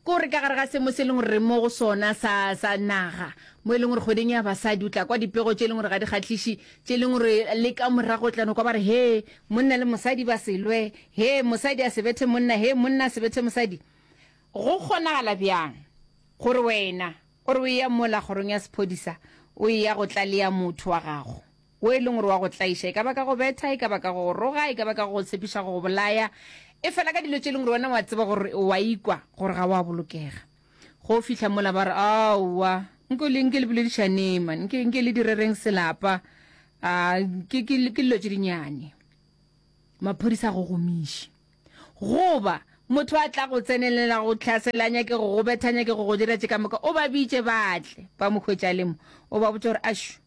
Ke gore ka gare ga semo se e leng gore re mo go sona sa, sa naga, mo e leng gore kgweding ya basadi o tla kwa dipego tše e leng gore ga di kgahliše, tše e leng gore le ka morago o tla no kwa ba re, he, monna le mosadi ba se lwe, he, mosadi a se bethe monna, he, monna a se bethe mosadi. Go kgonagala bjang gore wena o re o eya mola kgorong ya sephodisa o eya go tlalea motho wa gago? wo e leng gore wa go tlaiša, e ka ba ka go betha, e ka ba ka go go roga, e ka ba ka go go tshepiša go go bolaya, efela ka dilo tše e leng gore wena o a tseba gore o a ikwa gore ga o a bolokega. Ge o fihla mola ba re, Aowa, nke le, nke le boledišaneng man, nke, nke le direreng selapa, a, ke, ke, ke dilo tše dinyane. Maphodisa a go gomiše. Goba motho a tla go tsenelela go tlhasela, a nyake go go betha, a nyake go go dira tše ka moka, o ba bitše ba tle, ba mo hwetša a le mo, o ba botša gore, Ashu,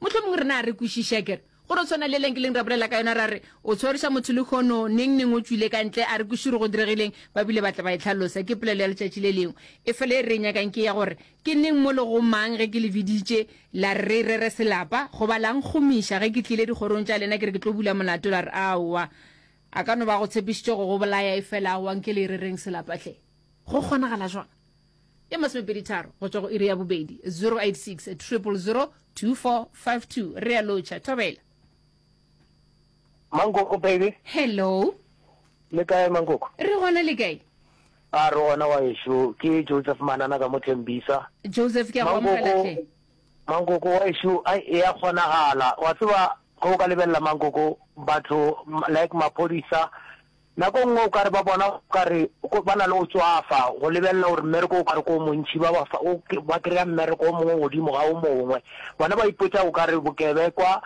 Mohlomongwe rena a re kwešiše, ke re, go no tshwana le leng-ke-leng ra bolela ka yona, ra re, O tshwariša motho lehono, neng-neng o tšwile ka ntle, a re kwešiše gore go diregileng, ba bile ba tla ba e hlalosa. Ke polelo ya letšatši le lengwe. Efela e re e nyakang ke ya gore, Ke neng mo le go mang ge ke le biditše, la re re rere selapa? Goba la nkgomiša ge ke tlile dikgorong tša lena ke re ke tlo bula molato, la re, Aowa, a ka no ba a go tshepišitše go go bolaya, efela aowa, nke le e rereng selapa hle. Go kgonagala jwang? e masomepeditharo go tšwa go iri ya bobedi 086 re a lotšha thobela mankoko baby hello le kae mankoko re gona le kae a re gona wa ešo ke joseph manana ka mothembisa joseph ke a go amogelatlhe mankoko wa ešo a e ya kgonagala wa tseba go ka lebelela mankoko batho like maphodisa Nako e nngwe o ka re ba bona o ka re ba na le go tswafa, go lebelela gore mmereko o ka re ke o montši, ba ba fa, o, ba kry-a mmereko o mongwe godimo ga o mongwe. Bona ba ipotsa o ka re bokebekwa,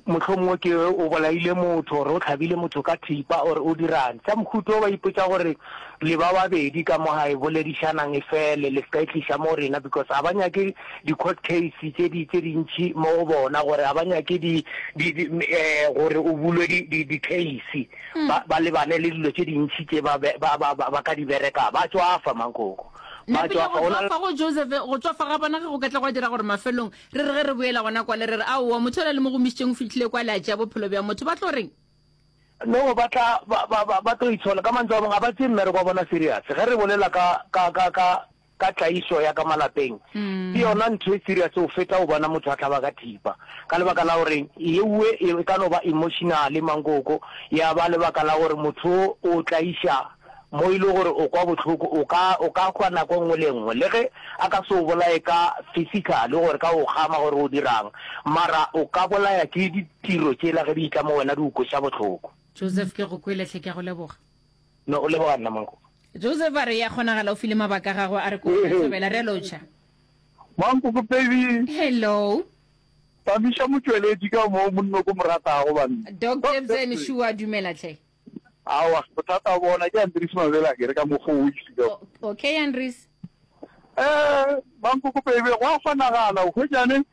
mohlomongwe ke o bolaile motho, or o hlabile motho ka thipa, or o dirang. Tša mohuta o ba ipotsa gore le ba babedi ka mo gae boledišanang e fele, le se ka e tliša mo go rena, because ga ba nyake di-court case tše di, tše dintši mo go bona, gore ga ba nyake di, di, di, um gore o bulwe di, di, di-case. ba, ba lebane le dilo tše dintši tše ba, be, ba, ba, ba, ba ka di bereka. Ba tšwafa, mankoko. Ba Napile go tšwafa. Go na le- tšwafa go Josephe, go tšwafa ga bona ge go ka tla gwa dira gore mafelong re re ge re boela gona kwale re re, Aowa, motho yola le mo gomišitšeng o fihlile kwale a tšea bophelo bja motho. Ba tlo reng? No, ba tla, ba, ba, ba, ba tlo itshola. Ka mantswe a mangwe, ga ba tseye mmereko wa bona serious. Ge re bolela ka, ka, ka, ka, ka tlaišo ya ka malapeng ke yona ntho e serious go feta go bona motho a hlaba ka thipa ka lebaka la gore yeue e ka no ba emotionale mankoko ya ba lebaka la gore motho o tlaiša mo e le gore o kwa bohloko o ka o ka hwa nako nngwe le nngwe le ge a ka se o bolaye ka physically gore ka o kgama gore o dirang mara o ka bolaya ke ditiro tšela ge di itla mo wena di o kweša bohloko Joseph ke go kwele hle ke a go leboga. No o leboga nna Mankoko. Joseph a re ya kgonagala o file mabaka a gagwe a re ko tla thabela. Re a lotšha. Mankoko baby. Hello. Thabiša motšweletši ka mo monno ko moratago banna. Doc Jebsen sure a dumela tlhe. Awa bothata bona ke Andries Mabele a kere ka mokgo o isilego. Okay Andries. Eh Mankoko baby go a kgonagala o hwetšane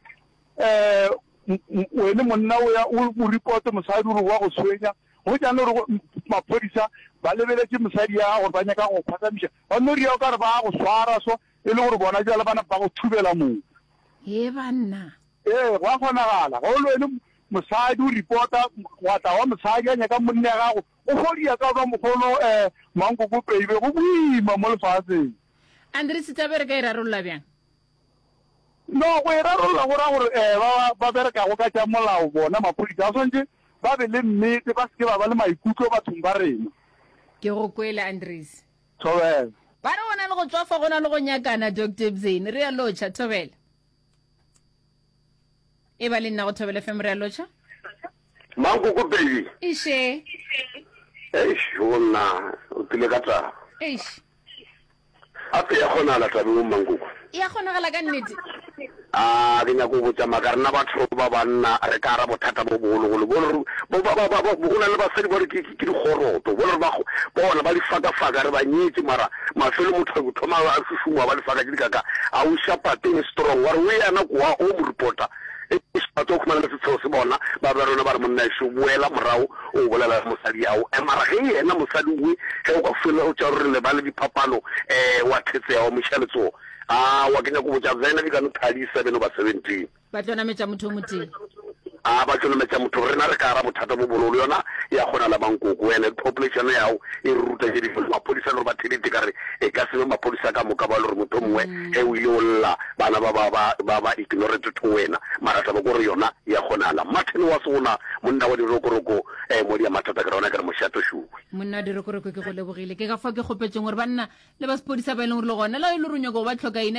eh wene monna o ya o mo report mosadi o re wa go tshwenya. Go ja no re go maphodisa ba lebeletše mosadi ya gore ba nyaka go phathamiša, ba no ria o ka re ba go swara so e le gore bona bjale ba napa ba go thubela mono. Hee banna! Ee, go a kgonagala. Ge o le wene mosadi o ripota gwa tla wa mosadi a nyaka monna ya gago, o fo ria ka ba mokgono eh, mankoko peibe go boima mo lefaseng. Andries, taba e re ka e rarolola bjang? No go e rarolla go ra gore ee ba ba berekago ka tša molao bona maphodisa ba swanetše ba be le nnete ba se ke ba ba le maikutlo bathong ba rena. Ke go kwele Andries. Thobela. Ba re go na le go tswafa go na le go nyakana Doctor Ebzeni, realo Cha. Thobela. e ba le nna go thobele fm re a lotšha mankoko baby iše eish go nna o tlile ka taba eish gape ya kgonagala tabeng o mankoko e a kgonagala ka nnete a ke nyako go botsa maka rena batho ba banna re ka ara bothata bo bogologolo bo go na le basadi ba re Ke dikgoroto. Bo lrba bona ba lifakafaka re ba nyetše mara mafelo motho a thoma a šušumoa ba lifaka tše dikaka a o ša pato e strong wa re o yana kowa o mo ripota e ša pato o khumana le setsheo se bona ba ba rona ba re monna ešo boela morao o bolela le mosadi ao eh mara ge yena mosadi we ge o ka fela o tša re le ba le diphapano eh wa thetseha wa mo iša letsoho ah wa ke nyako botša vena di ka no thadi 7 oba 17 ba tlo nametša motho o motee a ba tlo nametša motho rena re ka ara bothata bo bololo yona ya kgona la bankoko ene population yago e re ruta tše difo maphodisa le gore ba thedite ka re e ka sebe maphodisa ka moka ba le gore motho mongwe mm. ge o ile o lla bana ba ba ba ba ba ignore to to wena mara taba ko re yona ya kgona la martin wa sona monna wa dirokoroko eh mo dia mathata ka rona ka re moshato shuwe monna dirokoroko ke go lebogile ke ka fa ke gopetseng gore banna le ba sepodisa ba e leng gore le gona la e le ronyoko ba tlhoka ina